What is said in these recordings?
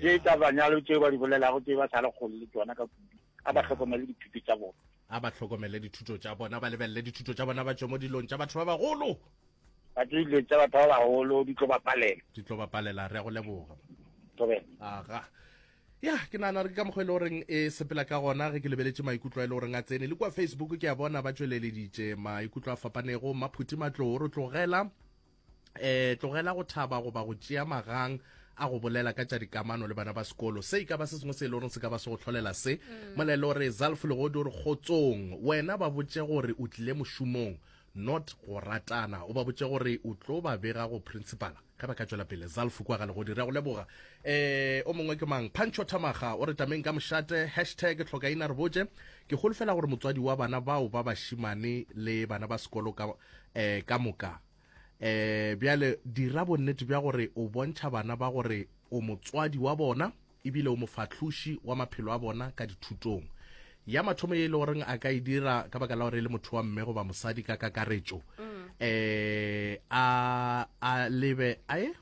Tše tša banyalo tšeo ba di bolelago tše ba sa le kgole le tšona ka kudu, a ba hlokomele dithuto tša bona. A ba hlokomele dithuto tša bona, ba lebelele dithuto tša bona, ba tšwe mo dilong tša batho ba bagolo. Ba tšwe dilong tša batho ba bagolo, di tlo ba palela. Di tlo ba palela, re a go leboga. Thobela. Aga. Ya, ke nana re ka mokgwa e le goreng e sepela ka gona ge ke lebeletše maikutlo a e le goreng a tsene le kua Facebook ke a bona ba tšweleleditše maikutlo a fapanego. Mmaphuti Matlou o re tlogela. eh tlogela go thaba goba go tšea magang a go bolela ka tša dikamano le bana ba sekolo se ka ba se sengwe se e le goreng se ka ba se go tlholela se mm. molelo re zalf legodi gore kgotsong wena ba botse gore o tlile mošomong not go ratana o ba botse gore o tlo ba bega go principala ge ba ka tswela pele zalf kwa ga legodi re go leboga um o mongwe ke mang pancho thamaga o re tameng ka mošate hashtag tlhokaina re botse Ke holofela gore motswadi wa bana bao ba bašimane le bana ba sekolo ka, eh, ka moka. Eh, bjale dira bonnete bja gore o bontšha bana ba gore o motswadi wa bona ebile o mofahloši wa maphelo a bona ka dithutong. Ya mathomo ye e le goreng a ka e dira ka baka la gore e le motho wa mme goba mosadi ka kakaretšo, eh, a, a lebe, a e?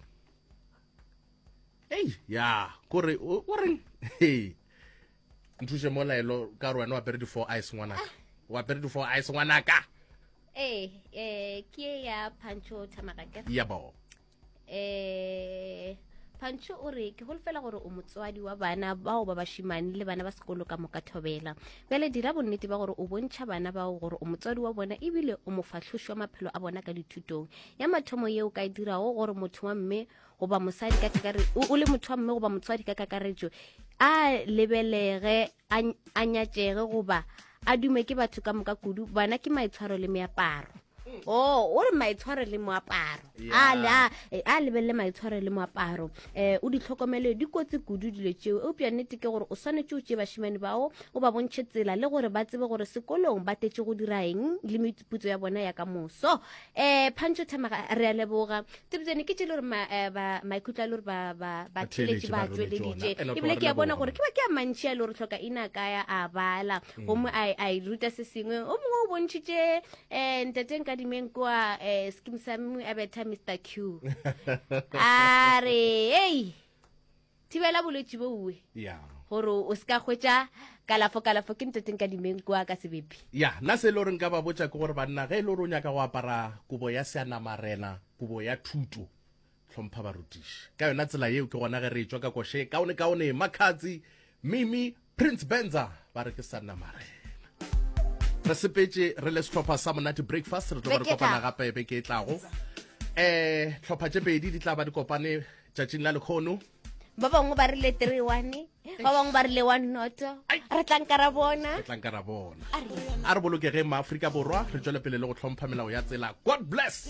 Ei, ya, kore, o, o reng? Hei. nthuše mola elo ka gore wena wa pere di-four ice ngwanaka ah. wa pere di-four ice ngwanaka ee eh, ke e ya pancho thamagake ya bo um eh, pancho o re ke golofela gore o motswadi wa bana bao ba bashimane le bana ba sekolo ka moka thobela bjale dira bonnete ba gore o bontšha bana bao gore o motswadi wa bona ebile o mofatlhoši wa maphelo a bona ka dithutong ya mathomo yeo ka e dirago gore motho wa mme goba mosadi ka kakaretšo o le motho wa mme goba motswadi ka kakaretšo a lebelege a nyatšege goba a dume ke batho ka moka kudu bona ke maitshwaro le meaparo mm. o oh, o re maitshwaro le moaparo a lebelele maitshwaro le moaparo um o ditlhokomele di kotse kudu dilo tšeo eupša nnete ke gore o swanetse o tšee bašimane bao o ba bontšhe tsela le gore ba tsebe gore sekolong ba tetše go dira eng le meputso ya bona ya ka moso eh phantšo thamaga re a leboga tebjane ke tšele gore eh, maikutlo a le gore batheletše ba tšweleditše ebile ke a bona gore ke ba ke a mantšhi a le gore tlhoka ina kaya a bala mm. gomme a e ruta se sengwe o mongwe o bontšhitše um eh, ntateng ka dimeng kwa um skim sa mongwe a betha mr q a re ei thibela bolwetši boue ya gore o se ka hwetša kalafo kalafo ke nteteng ka dimeng kua ka sebepi ya nna se e le gore nka ba botša ke gore banna ge e le gore o nyaka go apara kobo ya seanamarena kobo ya thuto hlompha barutiši ka yona tsela yeo ke gona ge re e tšwa ka koše kaone kaone makhatsi mimi Prince Benza ba re ke sa nna marena. Re sepetse re le setlhopha sa monate breakfast re tlo ba re kopana gape ebe ke tlago. Eh tlhopha tše pedi di tla ba di kopane tšatšing la lekhono. Ba bangwe ba rile 3 1 ba bangwe ba rile 1 noto. Re tlanka ra bona. Re tlanka ra bona. A re bolokege ma Afrika Borwa re tšwele pele le go tlhompha melao ya tsela. God bless.